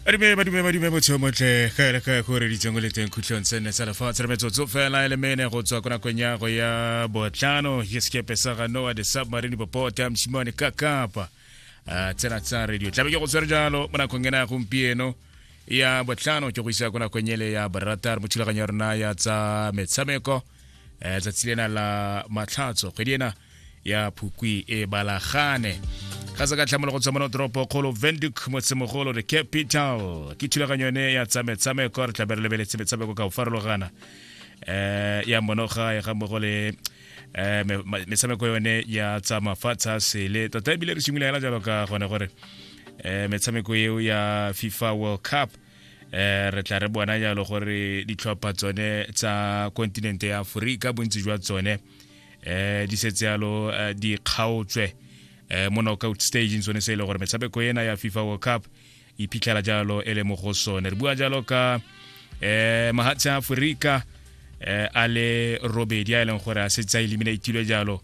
badume badume badume botsheo motlhe ga ele ga go reditseng o le teng khutlhong se nne sa lefatshe re metsotso fela e le mene go tswa ko nakong ya go ya botlhano ke sekepe sa ga noa the submarine popota mosimane ka kapa a tsena tsa radio tlabe ke go tshwere jalo mo nakong ena ya gompieno ya botlhano ke go isa ko nakong ele ya boratar mo thulaganyo ya rona ya tsa metshameko eh, tsatsi lena la matlhatso kgwedi ena ya phukwi e balagane ga se ka tlhamolo go tsomano toropo kgolo venduk motsemogolo the capital ke thulaganyo yone ya tsametshameko re tlabe re lebeletse metshameko ka go farologana um ya monoga ya ga mmogo le eh, metshameko yone ya tsa mafatshe a sele tota ebile re simolola hela jalo ka gone gore um metshameko eo ya fifa world cup um re tla re bona jalo gore ditlhopha tsone tsa kontinente ya aforika bontsi jwa tsone eh di setse yalo eh, di kgaotswe eh mo knockout stage tsone se e le gore metshameko ena ya fifa world cup e phitlhela jalo e le mo go sone re bua jalo ka eh mahatshe a aforika eh a le robedi a e leng gore a setse a eliminatilwe jalo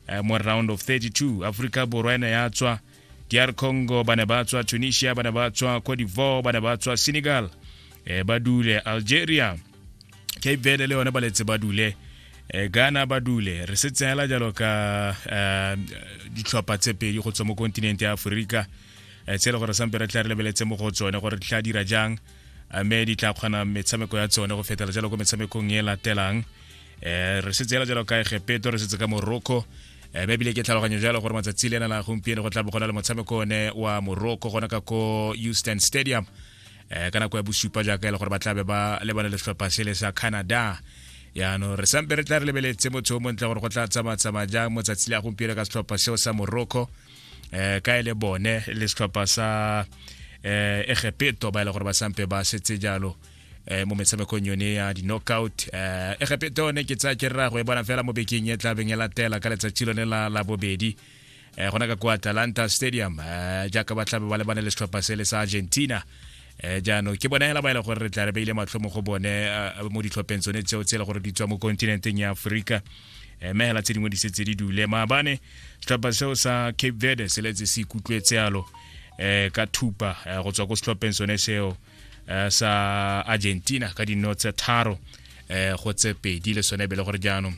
eh, mo round of 32 aforika borwa ene ya tswa dr congo ba ne ba tswa tunisia ba ne ba tswa cote divoire ba ne ba tswa senegal eh, ba dule algeria cape verde le yone ba letse ba dule eh, ghana ba dule re se tseela jalo ka eh, ditlhopha tse pedi go tswa mo kontinente ya aforika eh, tse e le gore sampe re tla re lebeletse mo go tsone gore di tla dira jang mme di tla kgona metshameko ya tsone go fetela jalo ko metshamekong e latelang um re setse yala jalo ka egepeto re setse ka morocco um bebile ke tlhaloganyo jalo gore matsatsi le nana gompieno go tla bo gona le motshameko one wa morocco gona ka ko houston stadium um ka nako ya bosupa jaaka e le gore ba tlabe ba lebane le setlhopha sele sa canada yaanong re sampe re tla re lebeletse motho o montle gore go tla tsamatsamaya jang motsatsi le a gompieno ka setlhopha seo sa morocco um ka e le bone le setlhopha sa um egepeto ba e le gore ba sampe ba setse jalo eh, mo metshamekong yone ya di-knockout eh, egepeta one ke tsaya ke rra go e bona fela mo bekeng e tlabeng e latela ka letsatsi lone la labobedi eh, gona ka kwa atalanta stadium eh, jaaka ba tlabe ba lebane le setlhopha se le sa argentina eh jaanong ke bona hela ba ile gore re tla re beile matlho mo go bone eh, mo ditlhopheng tsone tseo tse e le gore di tswa mo kontinenteng ya aforika eh, mme hela tse dingwe di setse di dule maabane setlhopha seo sa cape verde se letse se ikutlwetse yalo um ka thupa eh, go tswa ko setlhopheng sone seo eh, sa argentina ka dino tse tharo eh, go tse pedi le sone e be le gore jaanong